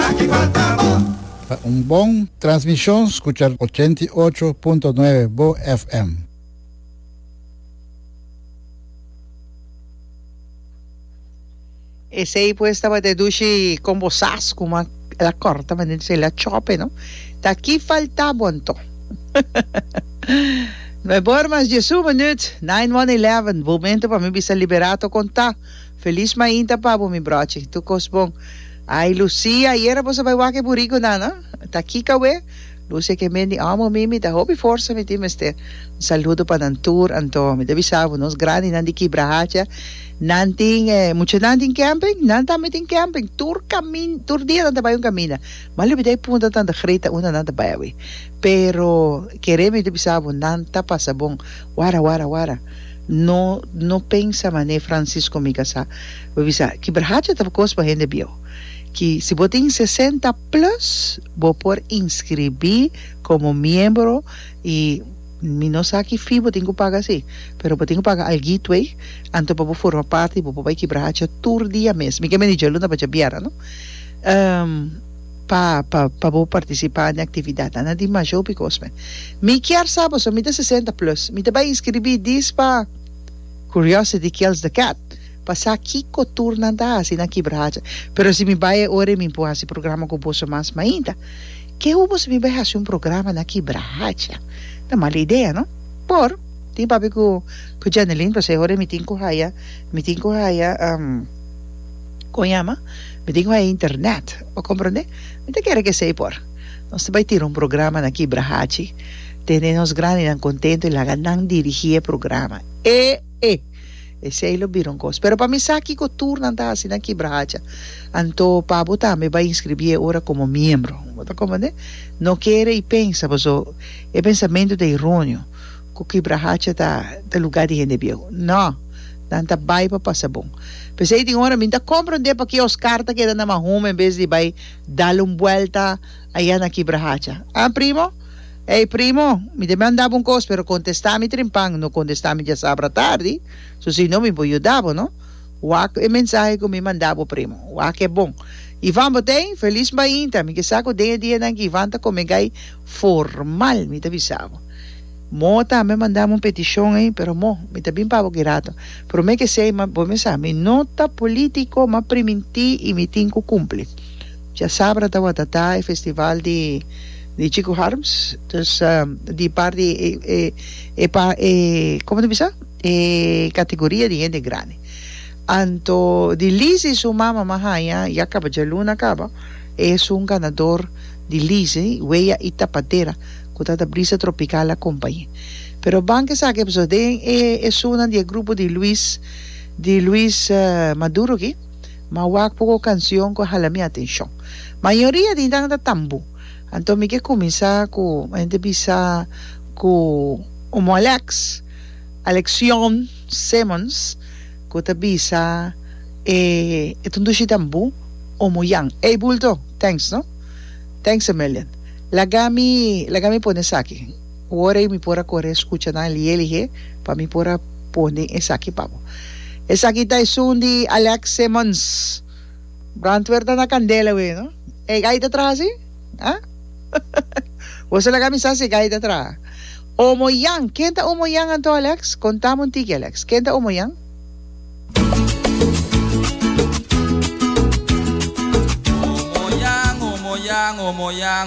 aki falta bo. Ta un bon transmishon skucha ochenta i ocho punto nuebe bo FM. Esey pues tabata e dushi con bo sas cu ma el a corta ma den el a chope no ta aki falta bo anto no e bormas Jesus minut nine one eleven momento pa mi bisa libera to con ta Feliz mainta pa bo mi brochi. Tur cos bon. Ay Lucia ayera boso bay wak e burico nan no? Ta Kika we? Lucia ke men di omo mimi ta hopi forsa mi tin mester. Un saludo pa nan tur anto. Mi ta bisa bo nos grandi nan di kibra hacha nan tin e mucha nan tin camping nan tambe tin camping tur camin tur dia nan ta bay un camina m'a lubida e punta tanta grita unda nan ta bay awe pero kere mi ta bisa bo nan ta pasa bon wara wara wara. No, no pensa mané Francisco Mica sa. Bo bisa, ki brahacha ta kos pa hende bieu. Ki si bo tin sesenta plus, bo por inskribí komo miembro i mi no sa ki fee bo tin ku paga si, pero bo tin ku paga alghito ei, anto pa bo forma parti i bo por bai ki brahacha tur dia mes. Mi ke mende djalunda pa djabiera, no? pa pa pa bo participa den actividad a na dimasho bikos me mi kier sa boso mi ta sesenta plus mi ta bay inscribi dis pa curiosity kills the cat pa sa kiko tur nan ta haci na kibra hacha pero si mi bay e ora y mi por haci programa cu boso mas mainta ke hu boso mi bay haci un programa na kibra hacha ta mal idea no por tin papi cu cu Janelin pasobra e ora mi tin cu haya mi tin cu haya. con yama mi tin cu hay internet bo comprende mi ta kere cu esey por nos ta bay tira un programa na kibra hachi tene nos grandinan contento y laga nan dirigi e programa e e esey lo bira un cos pero pa mi sa kico tur nan ta haci na kibra hacha anto pa bo tambe bay inscribi e ora como miembro bo ta comprende no kere y pensa pasobra e pensamento ta eruneo cu kibra hacha ta ta lugar di hende bieu. No! Nan ta bai pa pasa bon. P'esey tin ora mi ta compra un día pa kiosk car ta keda na Mahum en bes di bai dal un buelta aya na kibra hacha. Ah primo? Ey primo! Mi ta manda bo un cos pero contesta mi trimpan, no contesta mi diasabra tardi, su si no mi por yuda bo no. Wak e mensahe cu mi manda bo primo. Wak e bon. Ivan bo t'ey? Feliz mainta! Mi ke sa cu den e dianan cu Ivan ta come gai Formal mi ta bisa bo. Mo ta me mandami un peticion ey pero mo mi ta bin pa bo girato. Prome ke sey ma bo me sa mi no ta politico ma priminti y mi tin cu cumpli. Djasabra ta wata ta e festival di di Chico Harms dus di par di e e pa e como ta bisa e categoria di hende grandi. Anto di Lizzy su mama ma haya ya caba djaluna caba es un ganador. di lise, weya i tapadera ku ta ta brisa tropikal akompañ'é. Pero bank esaki a pasó den e esunan di e grupo di Luis di Luis Maduro aki, ma wak poko e kansion ku a hala mi atenshon. Mayoria di nan ta tambu. Anto mi ke kuminsá ku hende bisa ku Omoalex, Alexion Simmons. Cu ta bisa e e tundushi den bu o mu yan. Ey bulto! Thanks no. Thanks a million. Laga mi laga mi pone esaki wor ey mi por a core escucha nan elige elige pa mi por a pone esaki pa bo. Esaki ta esun di Alex Simmons. Brantwer ta na candela wey no. Ey ay ta traha si? Ha? Bo sa laga mi sa si e gaita traha. Omo Yan. Ken ta Omo Yan anto, Alex? Kontam un tiki, Alex. Ken ta Omo Yan? Omo Yan, Omo Yan, Omo Yan.